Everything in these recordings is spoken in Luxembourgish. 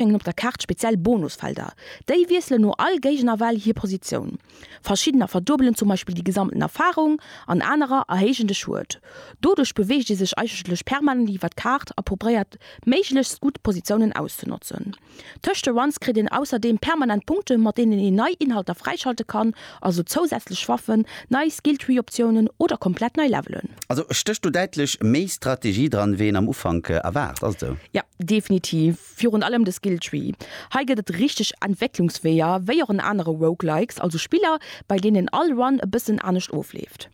Hänken op der Kaart speziell Bonusfelder. Déi wiesselen no all Géigenerwell hir Positioun. Verschiddener verduebelen zum Beispill déi gesamten Erfarung an anerer erhéijen de Schued. Doduerch beweegt ee sech eigentlech permanent iwwer d'Kaart a probéiert méiglechst gutt Positiounen auszenotzen. Tëscht de Runs kritt een ausserdeem permanent Punkte mat deenen een nei Inhalter fräischalte kann, also zousätzlech Waffen, nei Skilltree-Optiounen oder komplett nei Levelen. Also stécht do däitlech méi Strategie dran wéi een am Ufank erwaart, ass et esou? Jo, definitiv. Virun allem de Skill Tree. Hei gëtt et richteg Entwécklungsweeër, wéi och an anere Roguelikes, also Spiller, bei deenen all Run e bëssen anescht ofleeft.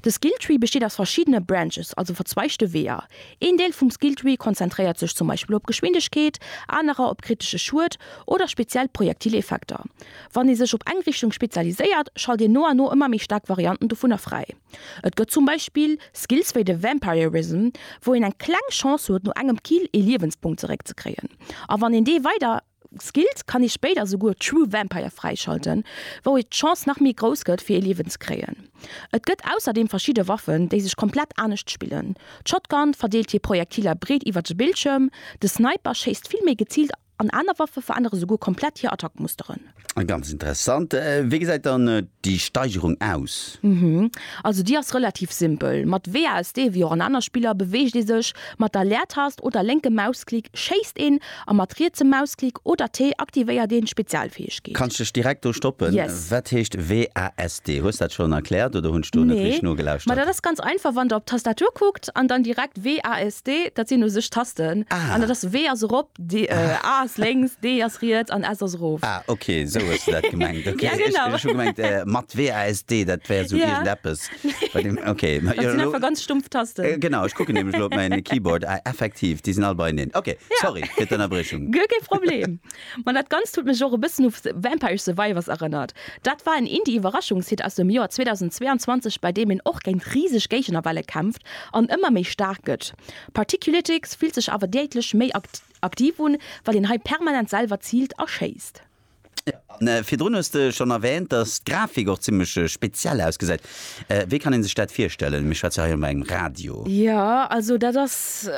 De Skill Tree besteet aus verschiddene Branches, also verzweigte Weeër. Een Deel vum Skill Tree konzentréiert sech zum Beispill op Geschwindegkeet, anerer op kritesche Schued oder speziell Projektileffekter. Wann ee sech op eng Richtung spezialiséiert, schalt een no an no ëmmer méi staark Varianten dovunner fräi. Et gëtt zum Beispill Skills wéi de Vampirism, wou een eng kleng Chance huet no engem Kill ee Liewenspunkt zeréck ze kréien. A wann een dee weider skillt, kann ee spéider souguer True Vampire fräischalten, wou ee d'Chance nach méi grouss gëtt fir ee Liewen ze kréien. Et gëtt ausserdeem verschidde Waffen, déi sech komplett anescht spillen. D'Shotgun verdeelt hir Projektiler breet iwwert de Bildschierm, de Sniper schéisst vill méi geziilt An aner Waffe verännere souguer komplett hir Attackmusteren. Ganz interessant. Wéi gesäit dann déi Steigerung aus? Also déi ass relativ simpel. Mat WASD, wéi och an aner Spiller, beweegt ee sech. Mat der Leertast oder lénke Mausklick schéisst een. A mat rietsem Mausklick oder T aktivéiert een d'Spezialfäegkeet. Kanns dech direkt do stoppen. Wat heescht WASD? Hues dat schonn erkläert oder hunn ech do net richteg nogelauschtert? Nee, ma dat ass ganz einfach. Wann der op d'Tastatur kuckt an dann direkt WASD, dat sinn u sech d'Tasten. An dat ass W ass erop. D, A ass lénks, D ass riets an S ass erof. Ah, ok, esou hues de dat gemengt. Ok, Ja, ech genau. ech hu gemengt, äh, mat W, A, S, D, dat wär esou Ja. iergendeppes bei dem, ok. Ma Dat jo, sinn lo, einfach ganz stumpf Tasten. äh, genau, ech kucken nämlech lo op mäin Keyboard, ah, effektiv, déi sinn all beieneen. Ok, sorry fir d'Ënnerbriechung. Guer kee Problem. Ma dat Ganzt huet mech och e bëssen u The Vampire Survivors erënnert. Dat war en Indie-Iwwerraschungshit aus dem Joer 2022, bei deem een och géint riseg Géigenerwelle kämpft an ëmmer méi staark gëtt. Particulitics fillt sech awer däitlech méi aktiv un, well een hei permanent selwer ziilt a schéisst. An virdrun hues de schonn erwähnt, dass d'Grafik och zimmlech speziell ausgesäit. Wéi kann een sech dat virstellen? Mir schwätze hei jo bei engem Radio. Jo, also dat ass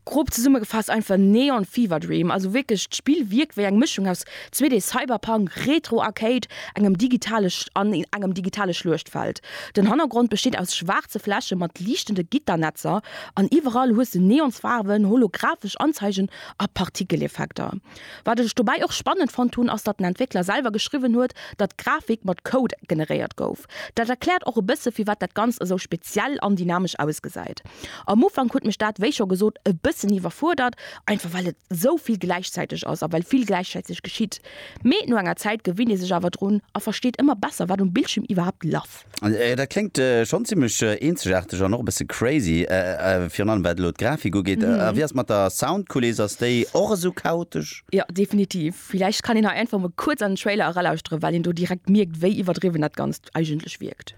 grob zesummegefaasst einfach Neon Fever Dream. Also wierklech, d'Spill wierkt wéi eng Mëschung aus 2D Cyberpunk Retro Arcade, engem digitale an engem digitale Schluechtfeld. Den Hannergrond besteet aus schwaarze Fläche mat liichtende Gitternetzer an iwwerall hues de Neonsfaarwen, holographesch Anzeigen a Partikeleffekter. Wat ech dobäi och spannend fonnt hunn, ass datt den Entwéckler selwer geschriwwen huet, datt d'Grafik mat Code generéiert gouf. Dat erkläert och e bësse firwat dat Ganzt esou speziell an dynamesch ausgesäit. Am Ufank huet mech dat, wéi scho gesot, e bëssen iwwerfuerdert, einfach well et sou vill gläichzäiteg ass a well vill gläichzäiteg geschitt. Mee no enger Zäit gewinnt ee sech awer drun a versteet ëmmer besser, wat um Bildschierm iwwerhaapt laff. Dat kléngt schonn zimmlech eenzegaarteg an och e bësse crazy, virun allem wat elo d'Grafik ugeet. A wéi ass et mat der Soundkuliss, ass déi och esou chaotesch? Jo, definitiv. Villäicht kann een hei einfach emol kuerz an den Trailer eralauschteren, well een do direkt mierkt, wéi iwwerdriwwen dat Ganzt eigentlech wierkt.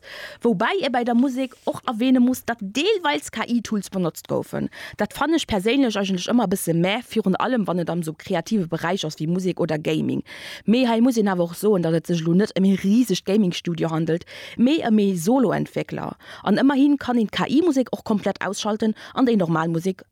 Woubäi ee bei der Musek och erwähne muss, datt deelweils KI-Tools benotzt goufen. Dat fannen ech perséinlech eigentlech ëmmer e bësse mä, virun allem wann et am esou kreative Beräich ass wéi Musek oder Gaming. Mee hei muss een awer och soen, datt et sech elo net ëm ee risegt Gaming-Studio handelt, mee ëm ee Solo-Entwéckler. An ëmmerhi kann een d'KI-Musek och komplett ausschalten an déi normal Musek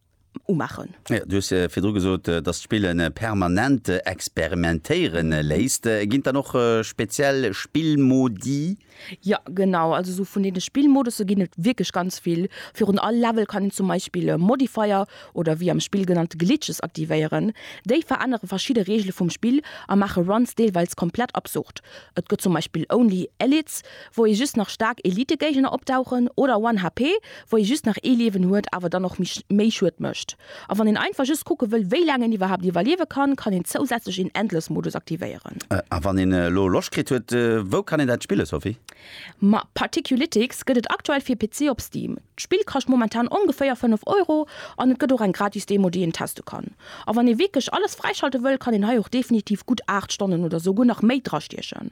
umaachen. Du hues virdru gesot, dass d'Spillen permanent experimentéiere léisst. Ginn et dann och speziell Spillmodi? Jo, genau. Also esou vun deene Spillmodusse ginn et wierklech ganz vill. Virun all Level kann een zum Beispill e Modifier oder wéi am Spill genannt Glitches aktivéieren. Déi verännere verschidde Reegele vum Spill a maache Runs deelweis komplett absurd. Et gëtt zum Beispill Only Elites, wou ee just nach staark Elitegéigner opdauchen, oder One HP, wou ee just nach ee Liewen huet, awer dann och méi Schued mécht. A wann een einfach just kucke wëll, wéi laang een iwwerhaapt iwwerliewe kann, kann een zousätzlech een Endless-Modus aktivéieren. A wann een elo Loscht kritt huet, wou kann een dat spillen, Sophie? Ma, Particulitics gëtt et aktuell fir PC op Steam. D'Spill kascht momentan ongeféier 5 Euro, an et gëtt och eng gratis Demo, déi een teste kann. A wann ee wierklech alles fräischalte wëll, kann een hei och definitiv gutt 8 Stonnen oder esouguer nach méi drastiechen.